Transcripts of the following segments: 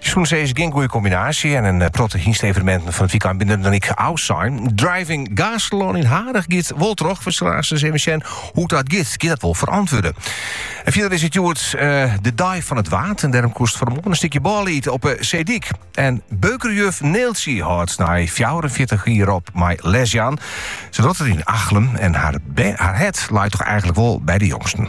Sûnt se is gjin goede kombinaasje en in protte hynste-eveneminten fan it wykein binne der dan ek ôfsein. Driving Gaastelân yn Harich giet wol troch, we sille aanst even sjen hoe't dat giet. Giet dat wol ferantwurde? En fierder is it hjoed de dei fan it Waad en dêrom koest fan 'e moarn in stikje bôle ite op de seedyk. En beukerjuf Neeltsje hâldt nei fjouwerenfjirtich jier op mei lesjaan. Se docht it yn Achlum en har hert leit toch eigenlik wol by de jongsten.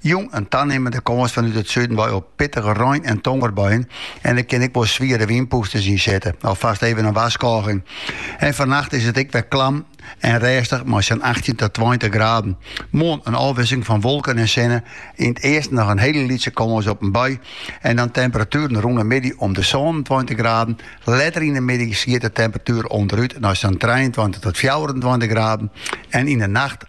Jûn in tanimmende kâns fanút it suden wei op pittige rein en tongerbuien en der kin ek wol swiere wynpûsters yn sitte. Alfast even in warskôging. En fannacht is it ek wer klam en rêstich mei sa'n achttjin ta tweintich graden. Moarn in ôfwisseling fan wolken en sinne, yn it easten noch in hiele lytse kâns op in bui en dan temperatueren rûn de middei om de sânentweintich graden. Letter yn de middei giet de temperatuer ûnderút nei sa'n trijeentweintich tot fjouwerentweintich graden en yn de nacht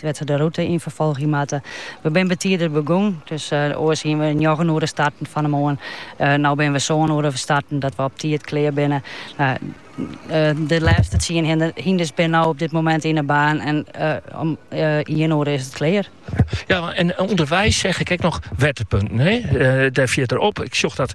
wêr't se de rûte yn ferfolgje moatte. We binne betider begûn, dus oars hiene we njoggen oere starten fan 'e moarn. No binne we sân oere starten, dat we op tiid klear binne. De lêste tsien hynders binne no op dit moment yn 'e baan en om ien oere is it klear. Ja, en ûnderweis seach ik ek noch wetterpunten. Dêr fiert er op. Ik sjoch dat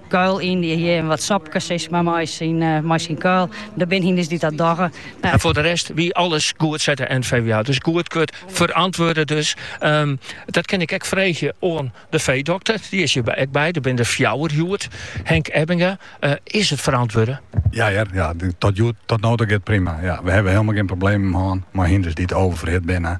Kuil yn, dy hjir wat sopkes is mar mei syn kuil. Der binne hynders dy't dat dogge. En foar de rest wie alles goed, seit de NVWA. Dus goedkeurd, ferantwurde dus. Dat kin ik ek freegje oan de feedokter. Dy is hjir ek by. Der binne der fjouwer hjoed. Henk Ebbinga, is it ferantwurde? Ja hear, ja. Tot no toe giet prima. Ja, we hawwe hielendal gjin problemen hân mei hynders dy't overferhit binne.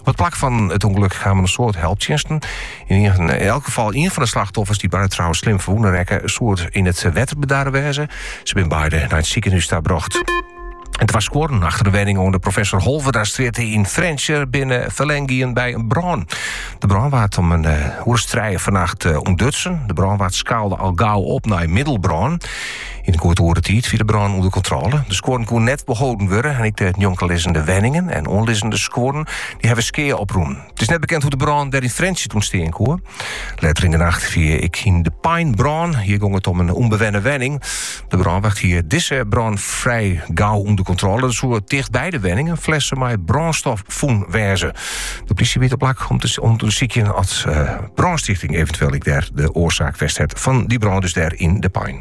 Op it plak fan it ûngelok kamen in soad helptsjinsten. Yn elk gefal ien fan de slachtoffers, dy't beide trouwens slim ferwûne rekke, soe it yn it wetter bedarre wêze. Se bin beide nei it sikehûs ta brocht. En twa skuorren achter in wenning oan de Professor Holwerdastrjitte yn Frjentsjer binne ferlern gien by in brân. De brân waard om in uh, eh, oer as trije fannacht uh, eh, ûntdutsen. De brânwar skaalde al gau op nei middelbrân. Yn in goed oere tiid wie de brân ûnder kontrôle. De skuorren koene net beholden wurde en ek de njonkenlizzende wenningen en oanlizzende skuorren dy hawwe skea oprûn. It is net bekend hoe't de brân dêr yn Frjentsjer ûntstean koe. Letter yn de nacht wie ek yn De Pein brân. Hjir gong it om in ûnbewenne wenning. De brânwacht hie dizze brân frij gau ûnder kontrôle. Der soe tichtby de wenning in flesse mei brânstof fûn wêze. De plysje wie op it plak om te ûndersykjen as uh, eh, brânstifting eventueel ek dêr de oarsaak wie fan dy brân dus dêr yn De Pein.